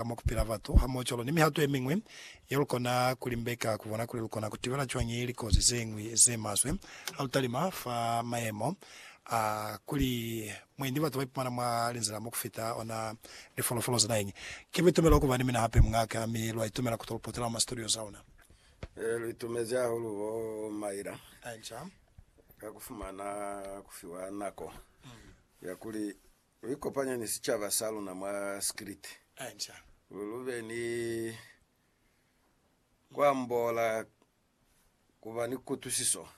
ka mwa ku pila batu hamoocwalo ni mihato ye miñwi ye lu kona ku limbeka ku bona kuli lu kona ku tibela cwañi likozi ze ñwi ze maswe ha lu talima fa mayemo a kuli mwendi batu ba ipumana mwa linzila mo ku fita ona lifolofolo za naheñi. Ki buitumelo ku ba ni mina hape muña'a-ka, mi lwa itumela ku to lu potela mwa masitudio za luna. Ee, lu itumezi hahulu bo Myra ka ku fumana ku fiwa nako ya kuli Lu ikopanya ni sicaba sa luna mwa Skrit. Lu be ni ku ambola ku ba ni kutusiso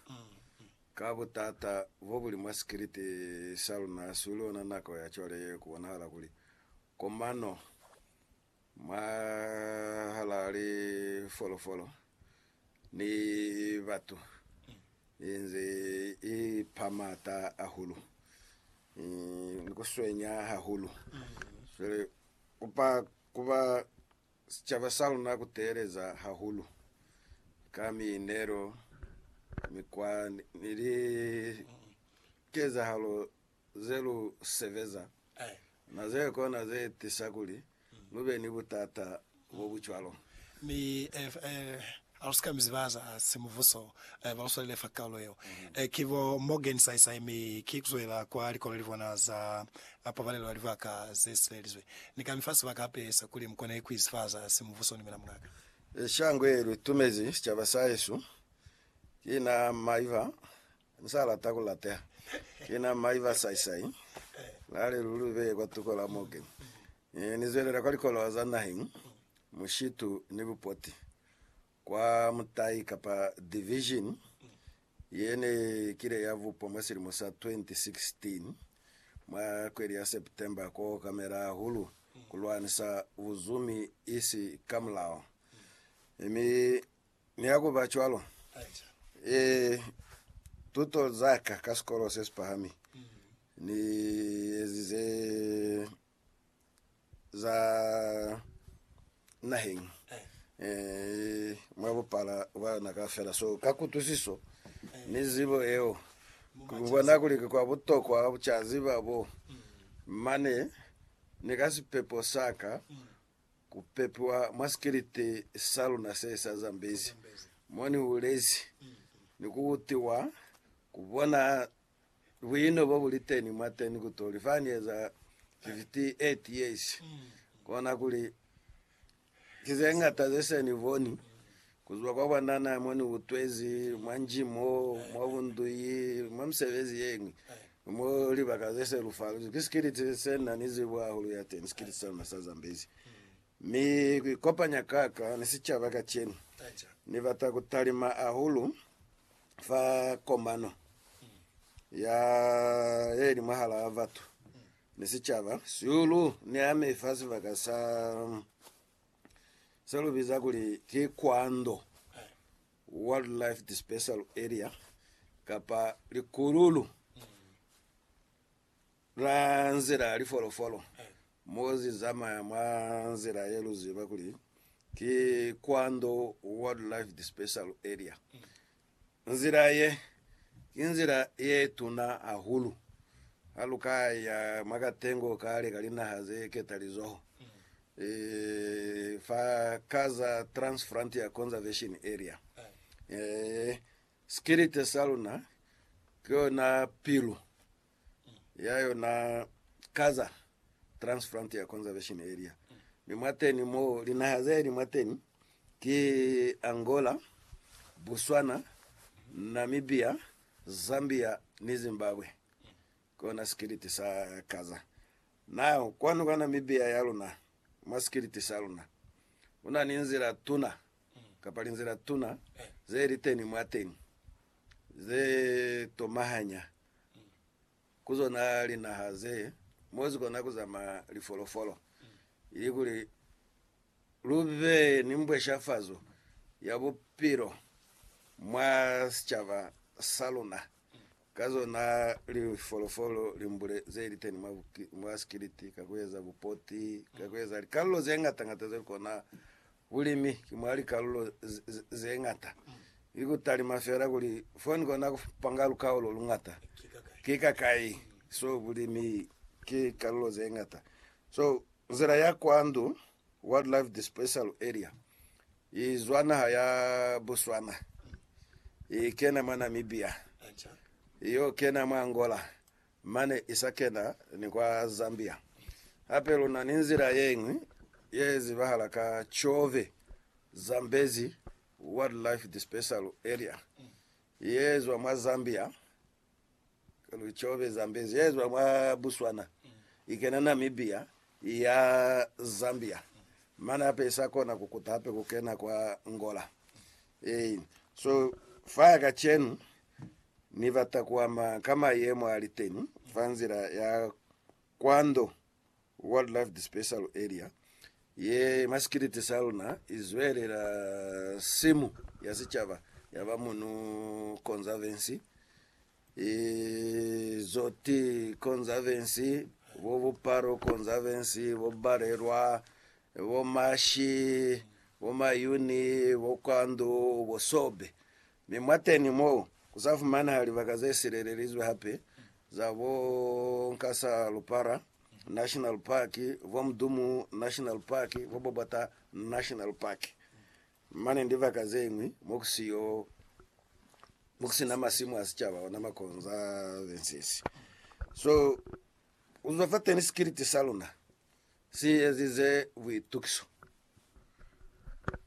ka butata bo buli mwa Skrit sa luna. Hasi li ona nako ya cwale ye ku bonahala kuli komano Mwahal'a lifolofolo ni batu inze i pa m'ata ahulu, ni ku swenya hahulu. Cwale ku pa ku ba sicaba sa luna ku teeleza hahulu ka miinelo, mikwa ni likezahalo ze lu sebeza na ze kona ze tisa kuli lu be ni butata bo bu cwalo. Mi ha lu si ka mi ziba za simubuso ba lu swalile fa kaulo yeo, ki bo Morgan Saisai, mi ki ku zwela kwa likoleli bona za Pabalelo ya Libaka ze Sibelizwe. Ni ka mi fa sibaka hape sa kuli mu kone ku izifaza simubuso ni mina, mungaka. Shango ye lu tumezi sicaba sa hesu ki na Maiva U sa lata ku lateha. Ki na mai ba saisai, na li, Luli beye kwa tuko la moke. Ni, ni zwelela kwa likolowa za naheng, mushitu ni bupoti, kwa mutai kapa division ye ne kile ya bupwa mwa silimo sa 2016, mwa kweli ya September, ku okamela hahulu ku lwanisa buzumi isi ka mulao. Mi Mi ha ku ba cwalo, e, tuto za ka ka sikolo se si pahami ni ezize za naheng e, mwa bupala bwa na kaufela. So ka kutwisiso ni zibo yeo, ku bona kuli ki kwa butokwa ku ca ziba bo mane ni ka sipepo sa ka Ku pepiwa mwa sikiliti sa luna se sa Zambezi mo ni hulezi, ni ku utiwa, ku bona buino bo bu li teni mwateni ku toli fa ni eza 58 years, kona kuli ki ze ñata ze se ni boni Kuzwa kwa bwanana mo ni utwezi, mwa nji mo, mwa bunduyi, mwa misebezi yeñwi, mo libaka ze se lu faluzi, ki sikiliti se na ni zibo hahulu ya teni, sikiliti sa luna sa Zambezi. Mi ku ikopanya ka ka ni sicaba kacenu, Ni bata ku talima hahulu fa komano ya ye li mwahala batu ni sicaba sihulu ni ame fa sibaka sa se lu biza kuli ki Kwando Wildlife Dispersal Area kapa likululu la nzila ya lifolofolo mo zi zamaya mwa nzila ye lu ziba kuli ki Kwando Wildlife Dispersal Area. Nzila ye, ki nzila ye tuna hahulu ha lu ka ya mwa katengo kale ka linaha ze ketalizoho, fa ka za Trans-Frontier Conservation Area. Sikilite sa luna ki yona pilu ya yona Gaza Transfrontier Conservation Area, mi mwateni mo linaha zeeli mwateni ki Angola, Botswana, Namibia, Zambia ni Zimbabwe. Kona sikiliti sa Gaza. Nao kwanu kwa Namibia ya luna, mwa sikiliti sa luna, kuna ni nzila tuna, kapa linzila tuna, zeeliteni mwateni, ze tomahanya ku zona linaha ze mo zi kona ku zamaya lifolofolo, ilikuli lu be ni mbweshafazo ya bupilo mwa sicaba sa luna ka zona lifolofolo limbule ze li teni mwa sikiliti, ka ku eza bupoti, ka ku eza likalolo ze ngata-ngata ze lu kona Bulimi ki mwa likalulo ze ñata, ki ku talima fela kuli fo ni kona ku panga lukao lo lu ñata. Ki kakai? So, bulimi ki kalulo ze ñata. So, nzila ya kwa ndu, Wildlife Dispersal Area, i zwa naha ya Botswana, i kena mwa Namibia, i yo kena mwa Angola, Mane i sa kena ni kwa Zambia. Hape lu na ni nzila ye ñwi ye zibahala ka Tshove, Zambezi Wildlife Dispersal Area, ye zwa mwa Zambia, Tshove, Zambezi, ye zwa mwa Botswana i kena Namibia i ya Zambia. Mane hape i sa kona ku kuta hape ku kena kwa Angola. Ee, so fa kacenu Ni bata ku ama ka mayemo a li teni fa nzila ya Kwando Wildlife Dispersal Area ye masikiliti sa luna i zwelela simu ya sicaba ya ba Munu Conservancy, Izoti Conservancy, bo Buparo Conservancy, bo Balelwa, bo Mashi, bo Mayuni, bo Kwando, bo Sobe. Mi mwateñi mo, ku sa fumanaha libaka ze silelelizwe hape za bo Nkasalu Para National Park, bo Mdumu National Park, bo Bobota National Park, mane ni libaka ze ñwi mo ku siyo, mo ku si na masimu a sicaba ona ma conservancies. So, ku zwa fateñi sikiliti sa luna si ezize buitukiso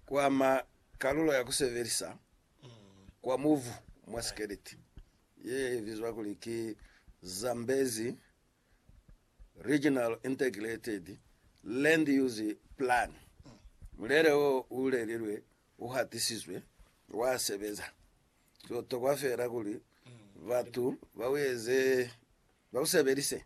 kwa mwa kalulo ya ku sebelisa kwa mubu mwa sikeleti ye bizwa kuli ki Zambezi Regional Integrated Land Use Plan. Mulelo wo u lelilwe u hatisizwe, wa sebeza. Ku tokwa feela kuli batu ba u eze, ba u sebelise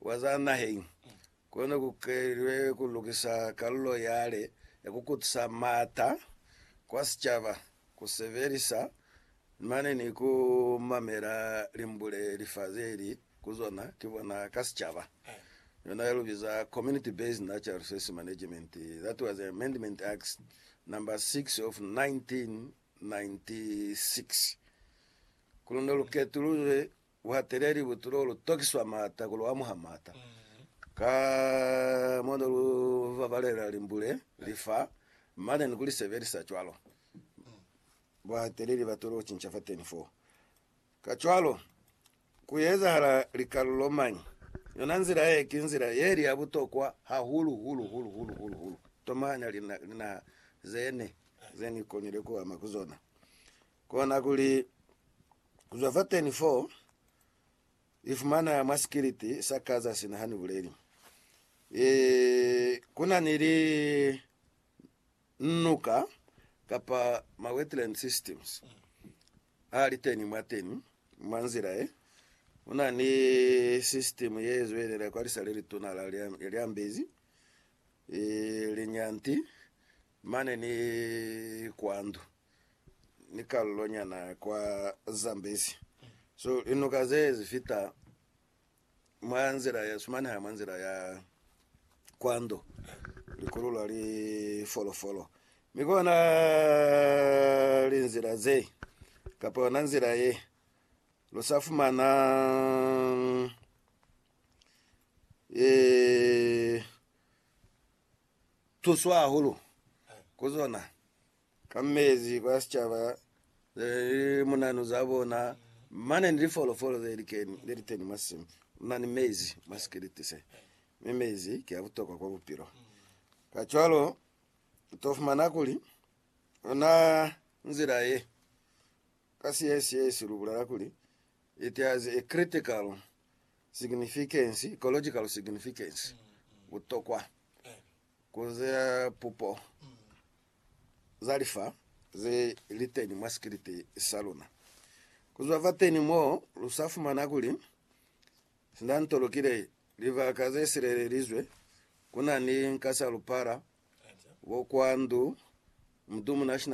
Wa za naheng, kone ku kelilwe ku lukisa kalulo yale ya ku kutisa m'ata kwa sicaba, ku sebelisa mane ni ku mamela limbule li fa zeli ku zona ki bona ka sicaba, yona ya lu biza Community Based Natural Resources Management, that was Amendment Act number 6 of 1996. Ku lu ne lu ketululwe Buhateleli bu tulo lu tokiswa maata ku lu amuha maata. Ka mo ne lu babalela limbule, li fa, mane ni ku li sebelisa cwalo, buhateleli ba tulo cinca fateni foo. Kacwalo, ku ezahala likalulo mañi? Yona nzila ye ki nzila ye li ya butokwa hahulu, hulu, hulu, hulu, hulu, hulu, tomanya linaha ze ne, ze ni konile ku ama ku zona. Kona kuli, ku zwa fateni foo, Ni fumana mwa sikiliti sa Gaza sina ha ni buleli. E, ku na ni li nuka, kapa ma wetland systems, a li teni mwateni, mwa nzila ye. Ku na ni system ye zwelela kwa lisa le lituna la Lyambezi, e, linyanti, mane ni kwandu. ni kalulo nyana kwa Zambezi. So linuka ze zi fita mwa nzila ya sumaneha mwa nzila ya kwando likulu la li folofolo mi kona linzila ze kapa yona nzila ye lo sa fumana e tuswa hulu kuzona ka mezi kwa sicaba ze li munanu za bona, mane ni lifolofolo ze likeni, le liteni mwa simu muna ni mezi mwa sikiliti se. Mi mezi ki a butokwa kwa bupilo. Kacwalo, u to fumana kuli, ona nzila ye, ka Siesiesi lu bulela kuli, it has a critical significance, ecological significance, butokwa ku za pupo. za lifa ze li teñi mwa sikiliti sa luna. Ku zwa fateni mo, lu sa fumana kuli Sind'anto Lukile, Libaka ze Silelelizwe, ku na ni Nkasa Lupala, Bokwandu, Mudumu National Park,